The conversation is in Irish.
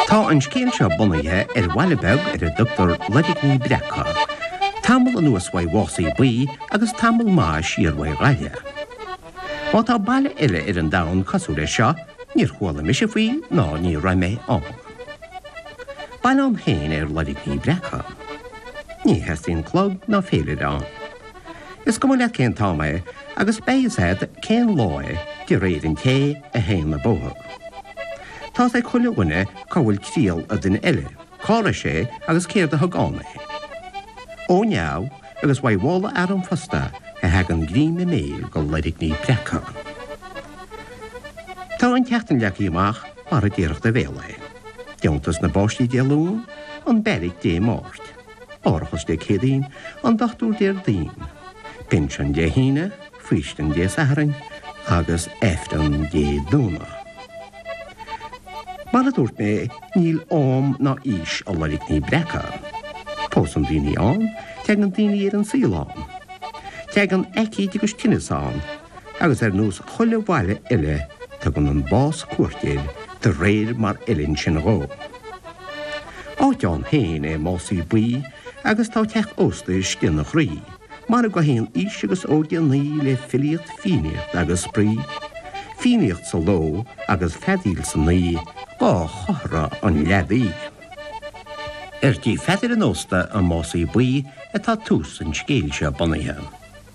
Tá an scéal seo bunaithe ar bhaile beag ar a dtugtar Loirgní Breaca. Tamall anuas uaidh Mhás an Bhuí agus tamall maith siar uaidh Ghaillimh. Má tá baile eile ar an domhan cosúil leis seo, níor chuala mise faoi ná ní raibh mé ann. Baile ann féin é Loirgní Breaca. Ní theastaíonn clog ná féilire ann. Is cuma leat cén t-am é agus beidh fhios agat cén lá é de réir an té a théann an bóthar. Tá's ag chuile dhuine cá bhfuil triall an duine eile, cá raibh sé agus céard a thug ann é. Ó neamh, agus uaidh mhála fhear an phosta, a thagann greim a mbéil go Loirgní Breaca. Tá an tseachtain leagtha amach mar a déarfadh do bhéal é. Deontas na bpáistí Dé Luain, an beairic Dé Máirt. Árachas Dé Céadaoin, an Dochtúir Déardaoin, Pinsean Dé hAoine, Faoistin Dé Sathairn agus Aifreann Dé Domhnaigh. Mar a dúirt mé, níl am ná aois i Loirgní Breaca. Pósann daoine ann, teagann daoine ar an saol ann. Teagann aicíd agus tinneas ann. Agus ar nós chuile bhaile eile, tugann an bás cuairt air de réir mar fheileann sin dhó. Áit ann féin é Másaí Buí agus tá teach ósta sin ina chroí, mar a gcaitheann aois agus óige an oíche le filíocht, fiannaíocht agus spraoi. Fiannaíocht sa ló agus feadaíl san oíche, dhá chomhartha an leadaí. Ar tigh Pheadair an Ósta i Másaí Buí atá tús an scéil seo bunaithe.